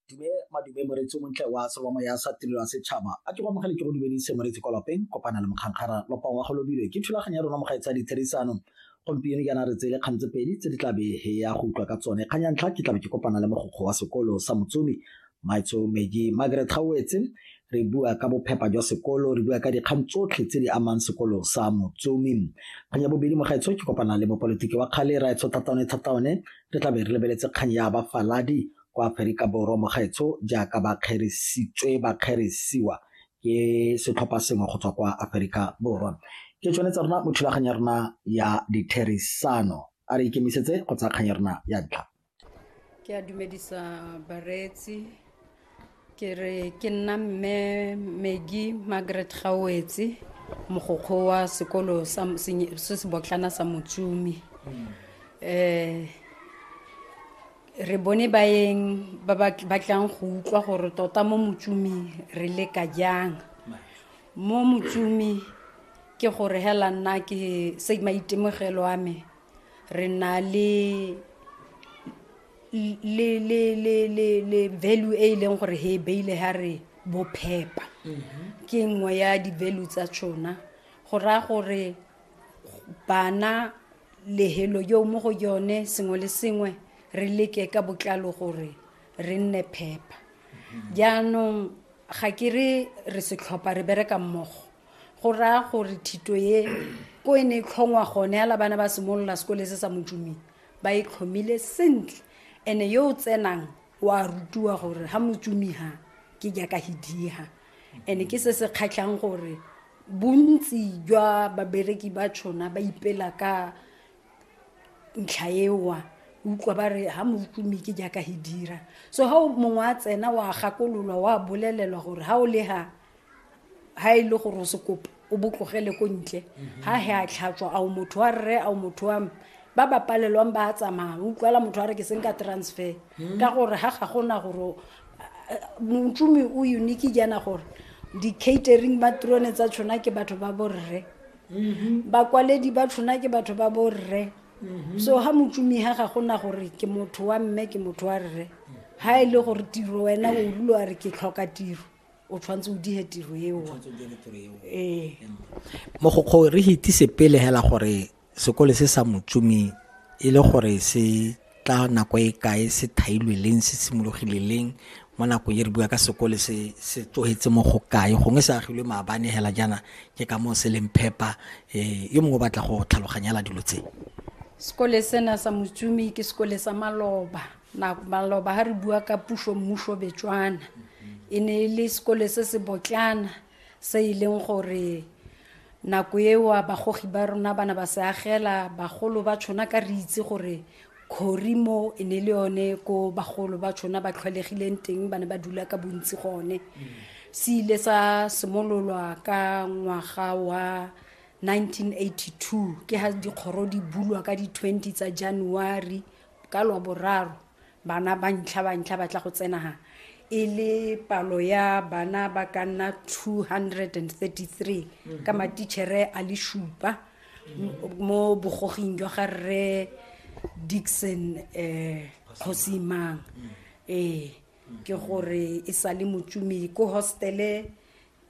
dume madume moretsi montle wa salomo ya sa tirelo ya setšhaba a ke go amogele ke go dumedise moretsi kwa lapeng kopana le mokgankgara lopa wa go lobilwe ke thulaganyo ya rona mogae tsa ditherisano gompieno jaana re tsele kgang tse pedi tse di tlabe ya go utlwa ka tsone kgang ya ntlha ke tlabe ke kopana le mogokgo wa sekolo sa motsomi Maitseo Maggie, Margaret Gawetse, re bua ka bophepa jwa sekolo, re bua ka dikgang tsotlhe tse di amang sekolo sa Motsomi. Kgang ya bobedi mo gaetsho ke kopana le mopolitiki wa kgale Raetsho Thataone Thataone, re tla be re lebeletse kgang ya bafaladi kwa Aferika Borwa mo gaetsho jaaka ba kgerisitswe ba kgerisiwa ke setlhopha sengwe go tswa kwa Aferika Borwa. Ke tsone tsa rona mo thulaganyo ya rona ya ditherisano. A re ikemisetse go tsaya kgang ya rona ya ntlha. Ke a dumedisa bareetsi ke re ke nna mme Megi Margaret Gawetse mogokgo wa sekolo sa senye- se se botlana sa Motsumi eh re bone baeng ba ba ba tlang go utlwa gore tota mo Motsumi re leka jang mo Motsumi ke gore hela nna ke se maitemogelo a me re na le le le le le le value e e leng gore he e beile ha re bophepa ke nngwe ya di-value tsa tsona go raya gore bana lehelo yo mo go yone sengwe le sengwe re leke ka botlalo gore re nne phepa jaanong ga ke re re setlhopha re bereka mmogo go raya gore thito ye ko e ne e tlhongwa gone ya labana ba simolola sekole se sa motsuming ba e tlhomile sentle ene yo o tsenang wa rutiwa gore ga motsumi ha ke jaaka hidiha ene ke se se kgatlhang gore bontsi jwa babereki ba tshona ba ipela ka ntlha ewa utlwa ba re ga motsumi ke jaaka hidira so ga mongwe a tsena wa gakololwa wa bolelelwa gore ga o le ga ha e le gore o se kopa o botlogele ko ntle ha he a tlhatswa ao motho wa rre ao motho wa me ba ba palelwang ba a tsamaya o utlwala motho a re ke seng ka transfer ka gore ha ga gona gore motsumi o unique jaana gore di-catering matrone tsa tshona ke batho ba borre bakwaledi ba tshona ke batho ba borre so ha motsumi ha ga gona gore ke motho wa mme ke motho wa rre ha e le gore tiro wena o rulo a re ke tlhoka tiro o tshwanetse o dihe tiro eo ee mogokgo re hitise pele hela gore sekole se sa motsumi e le gore se tla nako e kae se thailwe leng se simologile leng mo nakong e re bua ka sekole se se tlogetse mo go kae gongwe se agilwe maabane hela jaana ke ka moo se leng phepa um yo mongwe o batla go tlhaloganyela dilo tse sekole sena sa motsumi ke sekole sa maloba na maloba ha re bua ka puso mmuso betswana e ne e le sekole se se botlana se e leng gore nako eo bagogi ba rona bana ba se agela bagolo ba tshwana ka re itse gore khori mo e ne le yone ko bagolo ba tshwana ba tlhwalegileng teng ba ne ba dula ka bontsi gone se ile sa simololwa ka ngwaga wa 1982 ke ha dikgoro di bulwa ka di-20 tsa january ka lwaboraro bana ba ntlha ba ntlha ba tla go tsenaga e le palo ya bana ba ka nna 233 ka matitšhere a le šupa mo bogoging jwa ga rre dixon um kgosimang ee ke gore e sa le motsumi ko hostele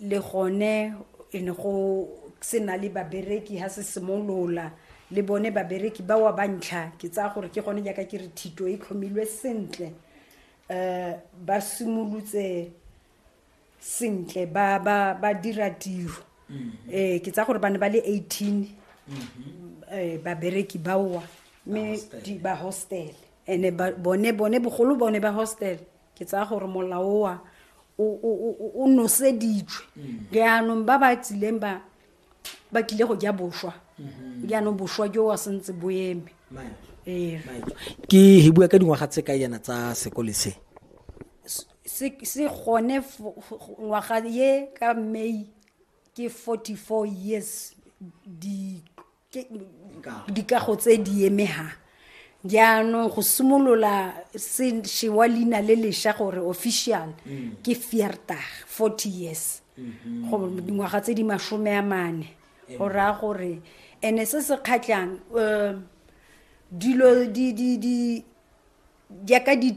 le gone e ne go se na le babereki ha se simolola le bone babereki ba wa bantlha ke tsaya gore ke gone jaaka ke re thito e tlhomilwe sentle um ba simolotse sentle ba ba ba dira tiro um ke tsaya gore ba ne ba le eighteen um babereki baowa mme ba hostele and-e bone bone bogolo bone ba hostele ke tsaya gore molaoa o noseditswe mm. jaanong ba ba tsileng ba ba kile go ja boswa mm-hmm. jaanong boswa jo wa sentse bo eme ee. ke he bua ka dingwaga tse ka yana tsa sekole se se gone ngwaga ye ka may ke 44 years di dikago tse di emegang jaanong go simolola se wa leina le lesha gore official mm. ke fiertag forty years mm-hmm. go dingwaga tse di masome a mane go raya gore ene se se kgatlhang um dilo di di di jaaka di